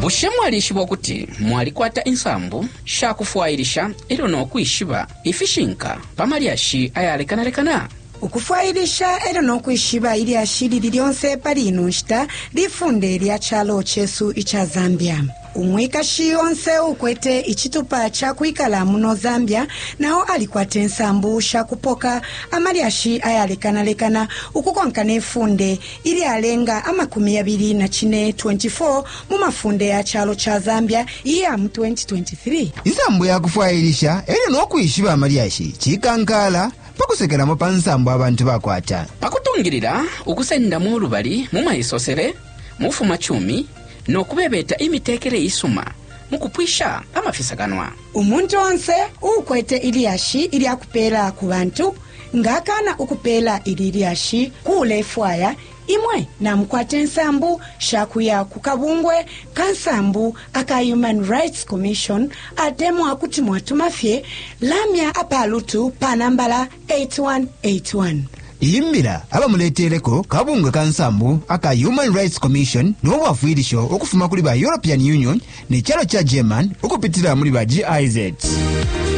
bushe mwalishiba ukuti mwalikwata insambu sha kufwailisha e lyo no kwishiba ifishinka pa malyashi ayalekanalekana ukufwailisha e lyo no kwishiba ilyashi lili lyonse pali ino nshita lifunde lya calo cesu ica zambia Umwikashi onse uukwete icitupa ca kwikala muno Zambia na o alikwata insambu sha kupoka amalyashi ayalekanalekana ukukonka ne funde ilyalenga amakumi yabili na cine, 24 mu mafunde ya calo ca Zambia iya mu 2023. Insambu ya kufwailisha e lyo no kwishiba amalyashi cikankaala pa kusekelamo pa nsambu abantu bakwata. Pa kutungilila ukusendamo ulubali mu maisosele, mu bufumacumi, no kubebeta imitekele isuma mu kupwisha amafisakanwa. Umuntu onse uukwete ilyashi ilya kupeela ku bantu nga akaana ukupeela ili lyashi ku ulefwaya, imwe namukwata insambu sha kuya ku kabungwe ka nsambu aka Human Rights Commission atemwa kuti mwatuma fye lamya apa lutu pa nambala 8181. Iyi mbila abamuleteleko kabungwe ka nsambu aka Human Rights Commission no bwafwilisho ukufuma kuli ba European Union ne calo ca German ukupitila muli ba GIZ.